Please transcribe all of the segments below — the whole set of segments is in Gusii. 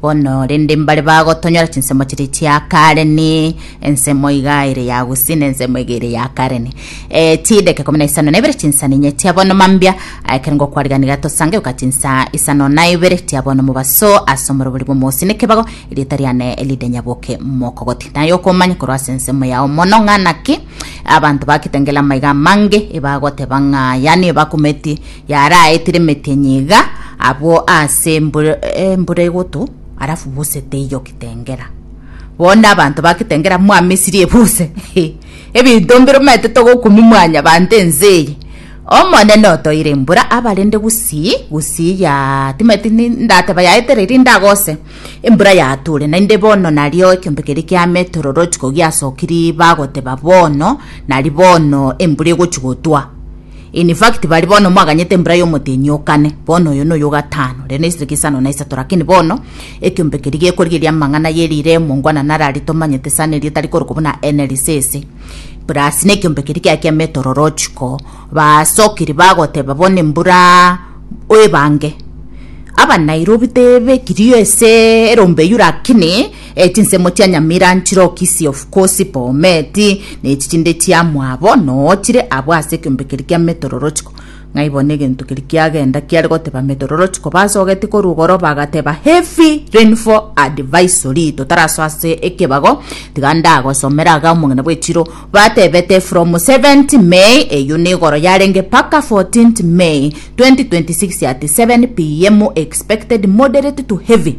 Bono rende mbare bagotonyora chinsemo chiria chia kare ne ensemo iga ere ya gusii ne ensemo iga ere ya kare ne e, chideka ikomi na isano na ibere chinsa ninye chia bono mambia ekero ngokwariganiria tosange goka chinsa isano na ibere chia bono mobaso ase omorobori bw'omosi nekebago erieta riane ride nyaboke mokogoti naye okomanya korwa ase ensemo yao mono ng'a naki abanto bagakitengela amaiga amange ebagoteba ng'a yani ebakumeti Yaraetire emetenya iga abwo ase embura, embura egoto arafu buse teiyo kitengera bono abanto ba kitengera mwamesirie buse ebinto mbiromete togokumi mwanya banto ense eye omonene otoire embura abarende gusii gusii ya timeti ndateba yaetere ri ndagose embura yature naende bono nario ekiombe keria kia metororochi ko giasokiri bagoteba bono nari bono embura egochi gotwa In fact, baria bono mwaganyete embura y'omotenyi o kane, bono oyo noyo o gatano, rende naisire kisano na isato, lakini bono, ekiombe keria gekorigeria amang'ana ye riire emongwana naro aria tomanyete esano eria etari korokwa buna NLC ase Plus, nekiombe keria kiaye kia meteorological, basokiri bagoteba bono embura oebange. Aba Nairobi tebekiri ase erombe eyio lakini. E chinsemo chia nyamira nchiroki siofu kosi pometi, na echi chinde chia mwabo noo chire abwo ase ekiombe keria kia metororochiko. Ng'ai bono egento keria kiagenda kiare goteba metororochiko, basogetie korwa igoro bagateba, Heavy rainfall advisory, totarasoa ase ekebago, tiga ndagosomere aga omong'ina bw'echiro, batebete from 7th May, eyio nigoro yarenge mpaka 14th May, 2026 at 7 PM expected moderate to heavy.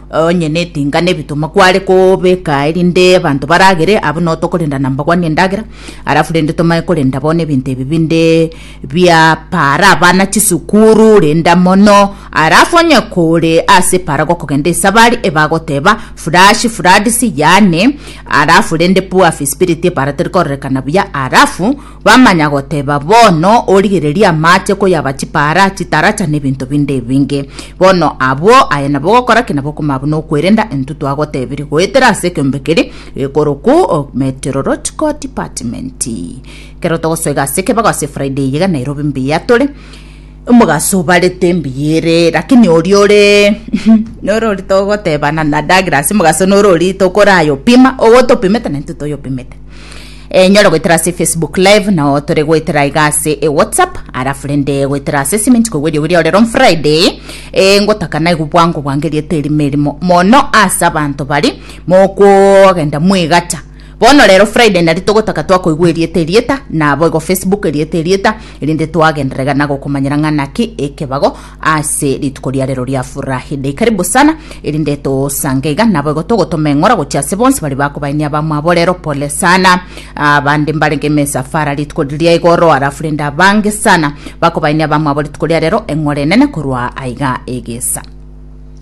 Onye netinga nebituma kware kobeka erinde abanto baragere, abwo no tokorenda na mbagwani endagera, alafu rende tomanye korenda bono ebinto ebi binde bia para abana chisukuru, renda mono, alafu onye kore ase para gokogenda esabari ebagoteba flash floods yaani, alafu rende poor feasibility para tere kororekana buya, alafu Bamanya goteba, Bono origererie amache koyaba chipaara, chitaracha, na ebinto binde ebinge. Bono abwo, aye nabo ogokora ki nabo okoma buna okwerenda intwe twagotebirie goetera ase ekeombe keria gekorokwa Meteorological Department. Ekero togosoiga ase ekebago ase Friday eye iga Nairobi mbuya tore, omogaso obarete mbuya ere, lakini oria ore nore oria togotebana na Douglas, omogaso nore oria tokorayopima, ogotopimete na intwe toyopimete. Eh, nyore goetera ase facebook live nao tore goetera iga ase e whatsapp arafu rende goetera ase cement koigwa eriogo riao rero on friday eh, ngotaka naigu bwango bwange riete erimo erimo mono ase abanto bari mokogenda mwegacha bono rero friday nari togotaka twakoigwa erieta erieta nabo igo facebook erieta erieta erinde twagenderera iga nagokomanyera ng'a naki ekebago ase rituko ria rero ria furahi dei karibu sana erinde tosange iga nabo igo togotoma eng'ora gochia ase bonsi bari bakobaini abamwabo rero pole sana abande mbarenge mesafara rituko riria igoro arafu rende abange sana bakobaini abamwabo rituko ria rero eng'ora enene korwa aiga egesa